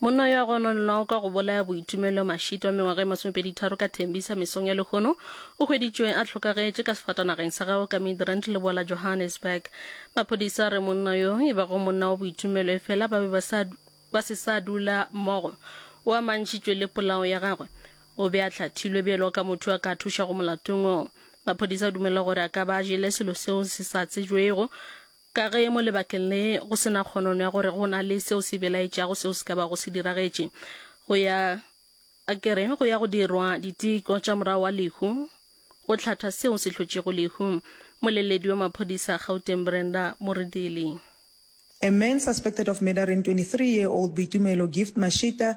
Monna yo a gononwago ka go bolaya Boitumelo Mashito wa mengwaga e masomepeditharo ka Tembisa mesong ya lehono o hweditšwe a hlokagetše ka sefatanageng sa gagwe ka Midrand leboa la Johannesburg. Maphodisa a re monna yo e bago monna wa Boitumelo efela ba be ba sa ba se sa dula mmogo o amantšhitšwe le polao ya gagwe. O be a hlathilwe bjalo ka motho yo a ka thušago molatong woo. Maphodisa a dumela gore a ka ba a jele selo seo se sa tsejwego Ka ge mo lebakeng le go se na kgonono ya gore go na le seo se belaetšago seo se ka bago se diragetše, go ya, a ke re, go ya go dirwa diteko tša morago wa lehu go hlatha seo se hlotšego lehu. Moleledi wa maphodisa a Gauteng Brenda Moredeli. A man suspected of murdering 23-year-old Boitumelo Gift Mashita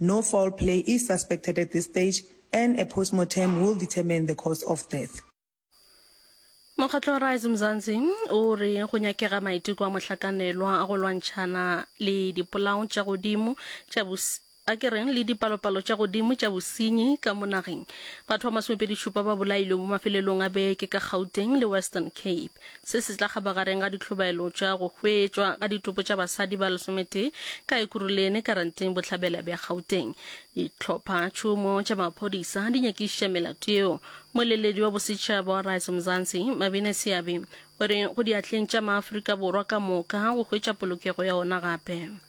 No foul play is suspected at this stage and a postmortem will determine the cause of death. Mokgatlo Rise Mzansi o re go nyakega maiteko a mohlakanelwa a go lwantšhana le dipolao tša godimo tša a ke reng le dipalopalo tša godimo tša bosenyi ka mo nageng. Batho ba masomepedi-šupa ba bolailwe mo mafelelong a beke ka Gauteng le Western Cape. Se se tla kgaba gareng ga ditlhobaelo tša go hwetšwa ga ditopo tša basadi ba lesometee ka Ekuruleni Karanteng Bohlabela bja Gauteng. Ditlhopha tšhomo tša maphodisa di nyakišiša melato yeo. Moeleledi wa bosetšhaba wa Rise Mzansi, Mabine Seabi, o re go diatleng tša Maafrika Borwa ka moka go hwetša polokego ya ona gape.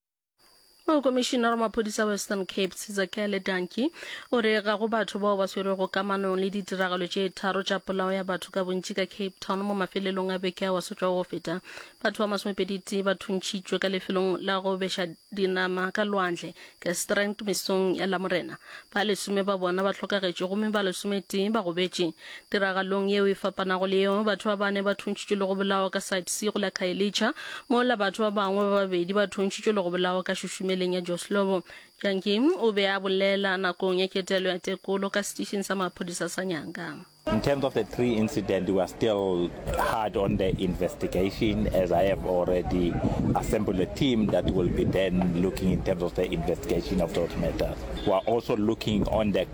Mokomišinara wa maphodisa Western Cape Sizakele Danki o re ga go batho bao ba swerego kamanong le ditiragalo tše tharo tša polao ya batho ka bontši ka Cape Town mo mafelelong a beke a wa sotšwago go feta. Batho ba masomepeditee ba thuntšhitšwe ka lefelong la go beša dinama ka lwandle Gastrandt mesong ya Lamorena. Ba lesome ba bona ba hlokagetše gomme ba lesometee ba gobetše. Tiragalong yeo e fapanago le yeo, batho ba bane ba thuntšitšwe le go bolawa ka Site C go la Khayelitsha, mola batho ba bangwe ba babedi ba thuntšitšwe le go bolawa ka šušumeleng ya Joslovo. Jantjie o be a bolela nakong ya ketelo ya tekolo ka setišing sa maphodisa sa Nyanga. In terms of the tree incident, we are still hard on the investigation as I have already assembled a team that will be then looking in terms of the investigation of those matters. We are also looking on the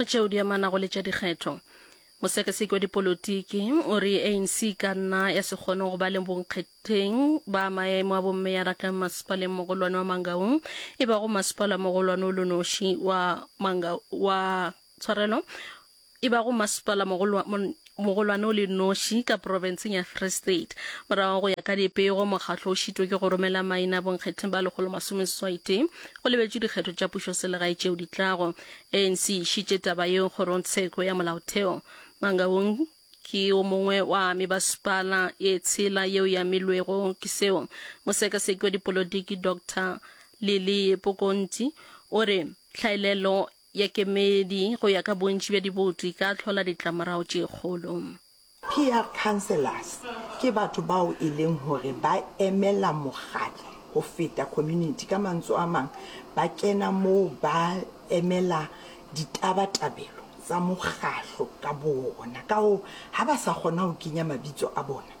o tšeo di amanago le tša dikgetho mosekaseki wa dipolotiki o re anc e ka nna ya se kgone go ba le bonkgetheng ba maemo a bommeyara ka masepaleng mogolwane wa mangaung e bago masepala mogolwane o lonoši wa manga wa tshwarelo e bago masepala mogolwane o le noši ka profenseng ya Free State. Morago go ya ka dipego, mokgatlo o šitwe ke go romela maina bonkgetheng ba lekgolo masome seswai tee go lebetšwe dikgetho tša pušoselegae tšeo di tlago. ANC e išitše taba yeo kgorongtsheko ya molaotheo. Mangaung ke o mongwe wa mebasepala e tshela yeo e amilwego ke seo. Mosekaseki wa dipolotiki Doctor Lily Pokonti o re hlaelelo ya kemedi go ya ka bontši bja diboto e ka hlola ditlamorago tše kgolo. Peer councillors ke batho bao e leng hore ba emela mokgatlo go feta community, ka mantso a mang ba kena moo ba emela ditaba-tabelo tsa mokgatlo ka boona, ka hoo ha ba sa kgona go kenya mabitso a bona,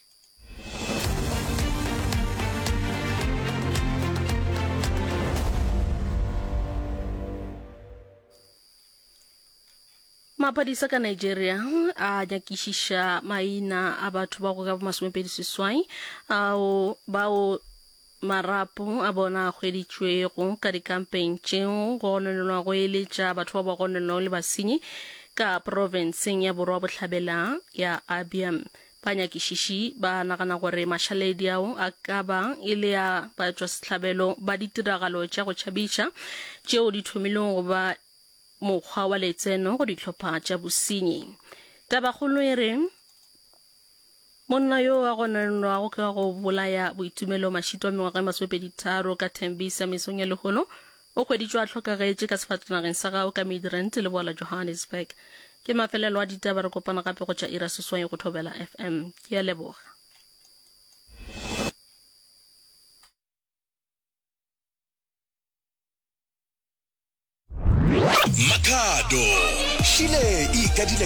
maphodisa ka nigeria a nyakišiša maina a batho ba go ka bo masomepedi seswai ao bao Marapo a bona a hweditšwego ka dikampeng tšeo go gononelwago e le tša batho bao ba gononelwago le basenyi ka profenseng ya Borwa Bohlabela ya Abia. Banyakišiši ba nagana gore mašaledi ao a ka ba e le a batšwasehlabelo ba ditiragalo tša go tšhabiša tšeo di thomilego go ba mokgwa wa letseno go dihlopha tša bosenyi. Tabakgolo e re, Monna yo a gononwago ka go bolaya Boitumelo Mashito wa mengwaga e masomepedi tharo ka Tembisa mesong ya lehono o hweditšwe a hlokagetše ka sefatanageng sa gao ka Midrand leboa la Johannesburg. Ke mafelelo a ditaba, re kopana gape go tša ira seswai go Thobela FM. Ke a leboga. Makhado, šile e ikadile ka